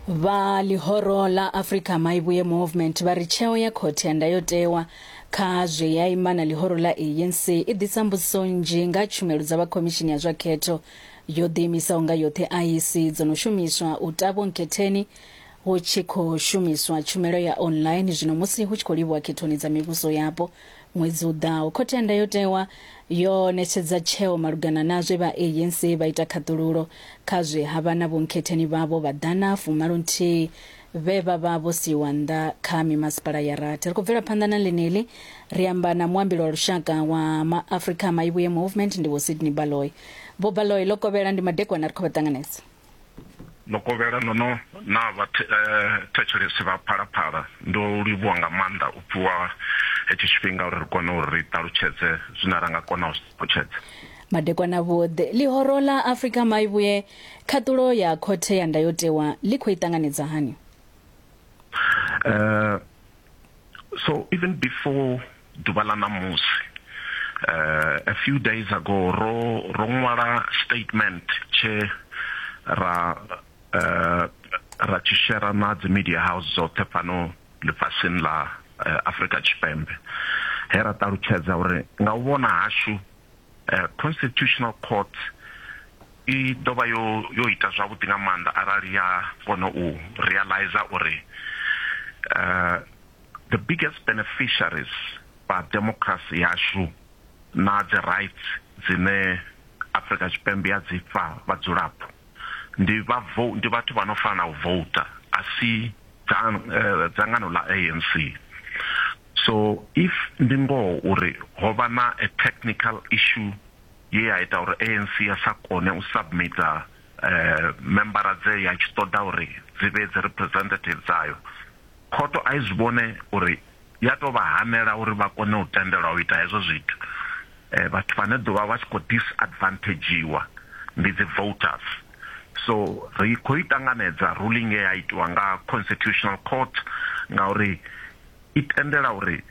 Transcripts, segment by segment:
Vha ḽihoro ḽa Africa Maivhuye Movement vha ri tsheo ya Khothe ya Ndayotewa kha zwe ya ima na ḽihoro ḽa ANC i ḓisa mbudziso nnzhi nga tshumelo dza vha Khomishini ya zwa Khetho yo ḓiimisaho nga yoṱhe, IEC, dzo no shumiswa u ta vhonkhetheni hu tshi khou shumiswa tshumelo ya online zwino musi hu tshi khou livhuwa khethoni dza mivhuso yapo Ṅwedzi u ḓaho, Khothe ya Ndayotewa yo ṋetshedza tsheo malugana na zwe vha ANC vha ita khaṱhululo kha zwe ha vha na vhonkhetheni vhavho vha ḓana fumalo nthihi vhe vha vha vho siiwa nnḓa kha mimasipala ya rathi. Ri khou bvela phanḓa na ḽeneḽi, ri amba na muambeli wa lushaka wa MaAfrika a Maivhuye Movement, ndivho Sydney Baloyi. Vho Baloyi, ḽo kovhela ndi madekwana ri khou vha ṱanganedza. Ḽokovhela ndo no na vha thetshelesi vha Phalaphala ndo livhuwa nga maanḓa u fhiwa hetshi tshifhinga uri ri kone uri ri ṱalutshedze zwine ra nga kona u zwi ṱalutshedza. Madekwana vhoḓhe, Ḽihoro ḽa Afrika Maivhuye, Khaṱulo ya Khothe ya Ndayotewa ḽi khou i ṱanganedza hani? So even before ḓuvha ḽa ṋamusi uh, a few days ago ro ro ṅwala statement tshe ra uh, ra tshi shera na dzi media house dzoṱhe fhano ḽifhasini ḽa uh, Afrika Tshipembe he ra ṱalutshedza uri nga u vhona hashu Eh, Constitutional Court i ḓo vha yo yo ita zwavhuḓi nga maanḓa arali ya kona u realize uri uh, the biggest beneficiaries ba democracy yashu na dzi rights dzine Afrika Tshipembe ya dzi fha vhadzulapo ndi vha ndi vhathu vha no fanela u voter asi dzangano ḽa ANC. So if ndi ngoho uri ho vha na a technical issue ye ya ita uri ANC ya sa kone u submitter membara dze ya tshi ṱoḓa uri dzi vhe dzi representative dzayo, khotho a i zwi vhone uri ya tou vha hanela uri vha kone u tendelwa u ita hezwo zwithu. Vhathu vhane ḓovha vha tshi khou disadvantagedziwa ndi dzi voters. So ri khou i ṱanganedza ruling ye ya itiwa nga Constitutional Court ngauri i tendela uri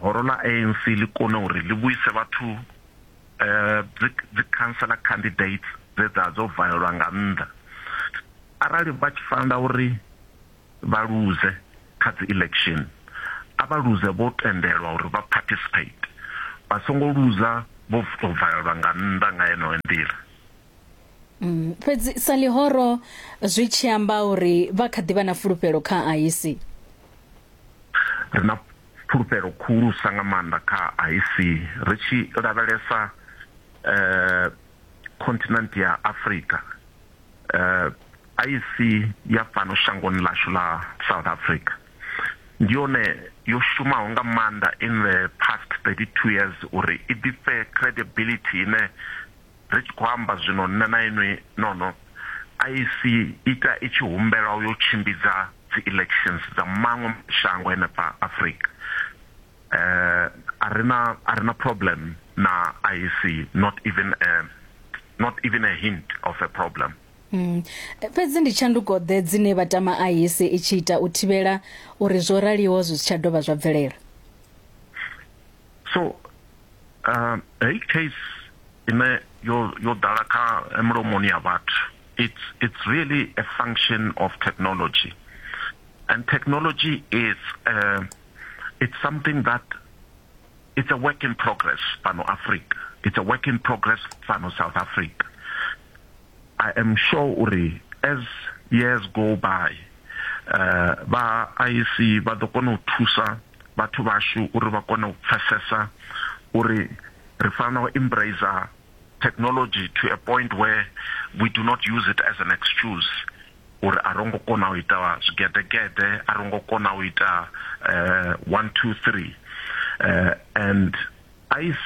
horo ḽa ANC ḽi kone uri ḽi vhuise vhathu dzi dzi councillor candidates dze dza dzo valelwa nga nnḓa arali vha tshi fanela uri. vha luze kha dzi election a vha luze vho tendelwa uri vha participate vha songo luza vho to valelwa nga nnḓa nga yeneyo nḓila. Mm, fhedzi sa ḽihoro zwi tshi amba uri vha kha ḓivha na fulufhelo kha IEC. Ri na fulufhelo khulusa nga maanḓa kha IEC ri tshi lavhelesa eh continent ya Africa eh a i si ya fhano shangoni ḽashu ḽa South Africa, ndi yone yo shumaho nga maanḓa in the past 32 years uri i ḓifhe credibility ine ri tshi khou amba zwino nṋe na inwi nono a i si ita i tshi humbelwa u yo tshimbidza dzi elections dza maṅwe mashango henefha Afrika. A ri na a ri na problem na IEC not even a not even a hint of a problem. Mm. E, Fhedzi ndi tshanduko-ḓe dzine vha tama IS i tshi ita u thivhela uri zwo raliho zwi si tsha dovha zwa bvelela? so uh, heyi case ine yo yo ḓala kha mulomoni ya vhathu it's it's really a function of technology and technology is uh, it's something that It's a work in progress fhano Afrika. It's a work in progress fhano South Africa. I am sure uri as years go by uh, vha IEC vha ḓo kona u thusa vhathu vhashu uri vha kone u pfesesa uri ri fanela u embrace technology to a point where we do not use it as an excuse uri a ro ngo kona u ita zwigeḓegeḓe a ro ngo kona u ita uh, one two three uh, and ic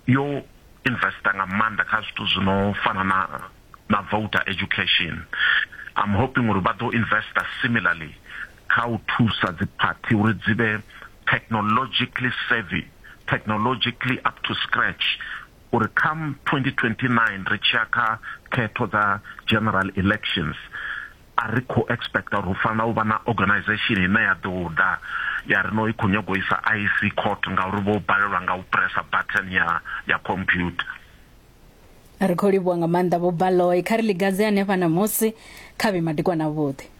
yo investa nga maanḓa kha zwithu zwi no fana na na voter education i'm hoping uri vha ḓo investa similarly kha u thusa dziphathi uri dzi vhe technologically savvy technologically up to scratch uri come 2029 ri tshiya kha khetho dza general elections a ri khou expecta uri hu fanela u vha na organisation ine ya ḓo ḓa ya ri no i khou nyaga u isa IEC court ngauri vho balelwa nga u pressa button ya ya computer. Ri khou livhuwa nga maanḓa Vho Baloyi, kha ri ḽigadze hanefha ṋamusi, kha vhe madekwana avhuḓi.